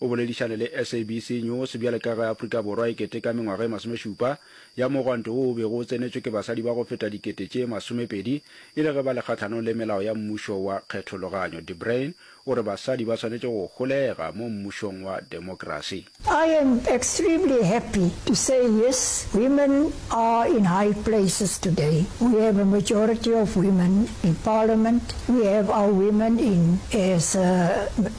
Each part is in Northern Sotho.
O boledišane le SABC News bjale ka ge Afrika Borwa e keteka mengwaga e masomešupa ya mogwanto wo o bego o tsenetšwe ke basadi ba go feta dikete tše masomepedi e le ge ba le kgahlanong le melao ya mmušo wa kgethologanyo. De Bruin o re basadi ba swanetše go holega mo mmušong wa demokrasi. I am extremely happy to say yes, women are in high places today. We have a majority of women in parliament, we have our women in as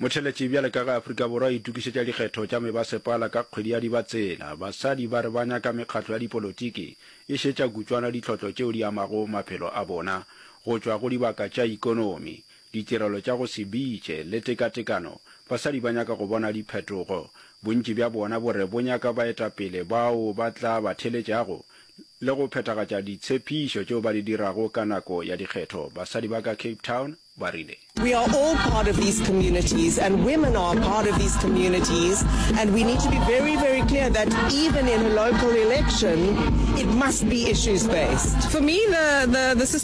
motheletši bjale ka ge afrika borwa e tukišetša dikgetho tša mebasepala ka kgwedi ya dibatsela basadi ba re ba nyaka mekgatlo ya dipolotiki e šetša kutswana ditlhotlo tšeo di amago maphelo a bona go tšwa go dibaka tša ikonomi ditirelo tša go se bitše le tekatekano, basadi ba nyaka go bona diphetogo. Bontši bja bona bo re bo nyaka baetapele bao ba tla ba theletšago le go phethagatša ditshepišo tšeo ba di dirago ka nako ya dikgetho, basadi ba ka Cape Town ba rile. We are all part of these communities and women are part of these communities and we need to be very, very clear that even in a local election it must be issues based. For me, the, the, the system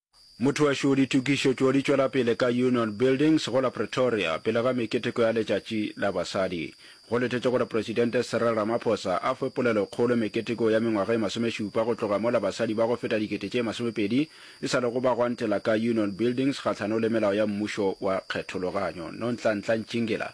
Mothoašo Ditokišo tšo di tšwela pele ka Union Buildings go la Pretoria pele ga meketeko ya Letšatši la Basadi. Go letetšwe gore Presidente Cyril Ramaphosa a fe polelokgolo meketeko ya mengwaga e masomešupa go tloga mola basadi ba go feta dikete tše masomepedi e sa lego ba gwantela ka Union Buildings kgahlano le melao ya mmušo wa kgethologanyo. Nontlantlantšingela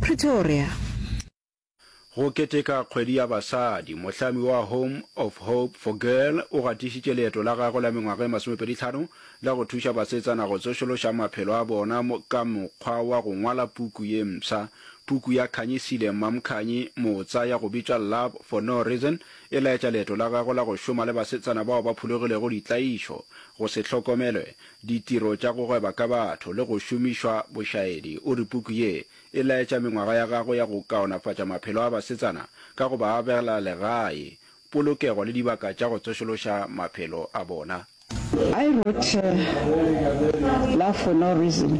Pretoria. Go keteka kgwedi ya basadi, mohlami wa Home of Hope for Girl o gatišitše leeto la gagwe la mengwaga e masomepedi tlhano la go thuša basetsana go tsošološa maphelo a bona ka mokgwa wa go ngwala puku ye mpsha. Puku ya Khanyisile Mamkhanyi Motsa ya go bitšwa Love for No Reason e laetša leeto la gagwe la go šoma le basetsana bao ba phulogilego ditlaišo, go se hlokomelwe, ditiro tša go gweba ka batho le go šomišwa bošaedi, o re puku ye e laetša mengwaga ya gagwe ya go kaonafatša maphelo a basetsana ka go ba abela legae, polokego le dibaka tša go tsošološa maphelo a bona. I wrote Love for no reason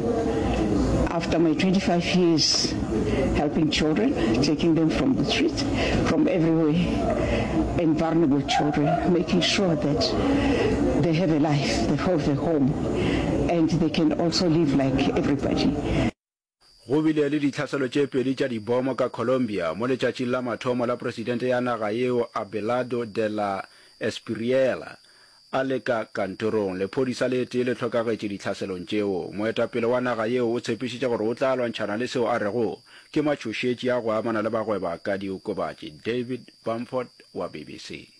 after my 25 years helping children, taking them from the streets, from everywhere and vulnerable children, making sure that they have a life. the for the home and they can also live like everybody. Go bile le ditlhaselo tše pedi tša dibomo ka Colombia mo letšatšing la mathomo la presidente ya naga yeo Abelardo de la Espriella a le ka kantorong. Lephodisa le tee le hlokagetše ditlhaselong tšeo. Moetapele wa naga yeo o tshepišitše gore o tla lwantšhana le seo a rego ke matšhošetši a go amana le bagweba ka diokobatši. David Bamford wa BBC.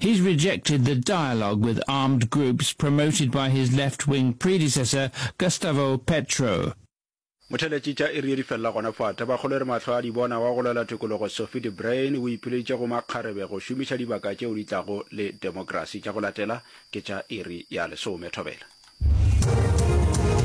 He's rejected the dialogue with armed groups promoted by his left-wing predecessor Gustavo Petro. Motheletši tša iri ye di felela gona fa. Tabakgolo e re mahlo a di bona wa go lwela tokologo Sophie de Bruyn o ipileditše go makgarebe go šomiša dibaka tšeo di tlago le demokrasi. Tša go latela ke tša iri ya lesome thobela.